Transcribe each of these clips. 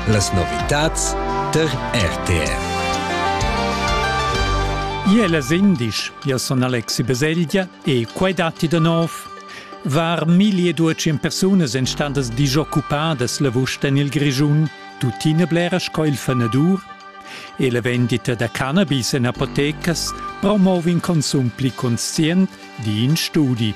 Las novitads tar RTR. Ie las indisch, io son Alexi Beselgia e quai datti da nov. Var 1200 persunas en standas disoccuppadas lavust en il Grischun, tuttina blera sco il fenadur. E la vendita da cannabis en apotecas promova in consum pli conscient, di in studi.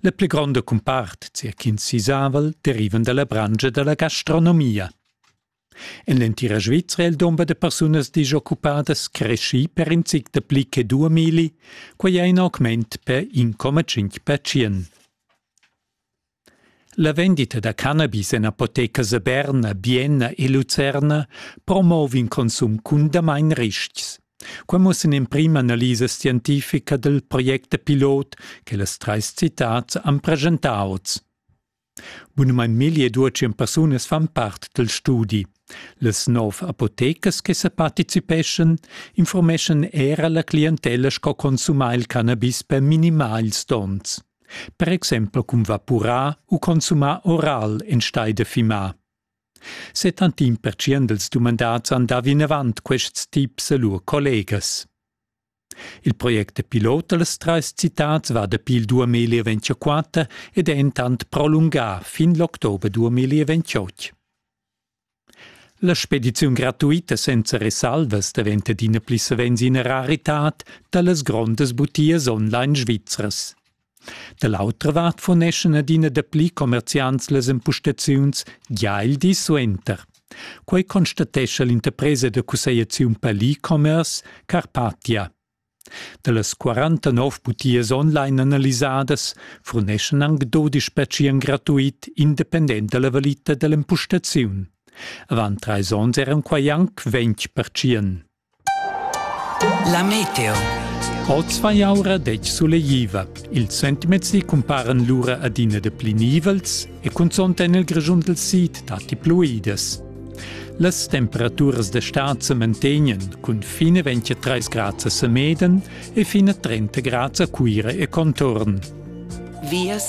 La pli gronda cumpart, sia ch'ins sisaval, derivan dalla branscha dalla gastronomia. En l'entira Svizra è il dumber da persunas disoccupadas creschì per in zic dapli che due mili, quai è in augment per 1,5 percent. La vendita da cannabis en apotecas a Berna, Bienna e Lucerna promova in consum cundamain ristgs. Quai mussa in'emprima analisa scientifica dal project da pilot che las trais citads han preschentà oz. Bunamain milli e duatschient persunas fan part dal studi. Las nov apotecas che sa participeschan informeschan era la clientella sco consumar il cannabis per minimar ils donns. Per exempel cun vapurar u consumar oral enstagl da fimar. Settantin pertschient els dumandads han dà vinavant quests tips a lur collegas. Il project pilot da las trais citads va dapi il 2024 ed è entant prolungà fin l'october 2028. La spediziun gratuita senza resalvas daventa adina pli savens ina raritad da las grondas butias online svizras. Da l'autra vart furneschan adina dapli commerziants las empustaziuns gia il di suenter. Quei constatescha l'interpresa da cussegliaziun per l'e-commerce Carpatia. Dallas 49 butias online analisadas furneschan anc dodisch pertschien gratuit independent dalla valita dall'empustaziun. Avant treis onns eran quai anc ventg pertschien. La meteo. Oz va jau era detg sulegliva. Ils sentiments cumparan lura adina de pli nivels e cunzont en il Grischun del Sid datti pluidas. Las temperaturas d'estat se mantegnan cun fine 23 grads a Semeden e fine 30 grads a Cuira e contorn. vias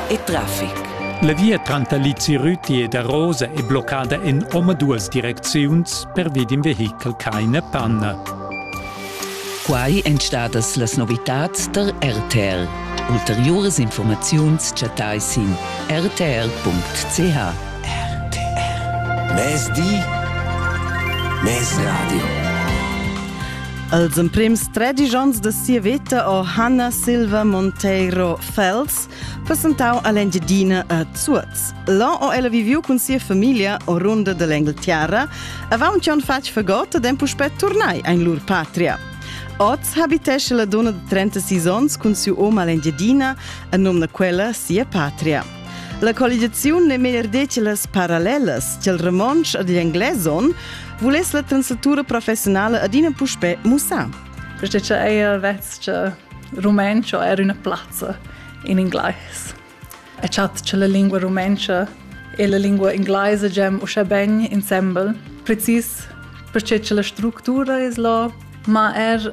e traffic. La via tranter Lizirüti e da Rosa è bloccada en omaduas direcziuns pervi d'in vehichel ch'haina panna. Quai èn stadas las novitads tar RTL. Ulteriuras informaziuns chattai sin rtr.ch. RTR. Mezdi, mezradio. Els emprims tredisch onns da sia veta o Hanna Silva Monteiro Fels presentau all'Engiadina a Zuoz. Là ho ella viviu cun sia famiglia o runda dell'Engleterra, avaunt che han fatg fagot ed han puspè turnai in lur patria. Oz habitesce la donna de 36 onns cun siu om all'Engiadina, a nom da quella sia patria. La colligaziun n'è meglier detg las parallelas ch'il romontsch ed igl englais on, vuless la translatura professionala adina puspè mussar. Questa è eir vestgia rumenca o er üna plazza in inglais. E chat che la lingua rumenca e la lingua inglese gem uschè ben insembel, precis perché che la struttura es là, ma er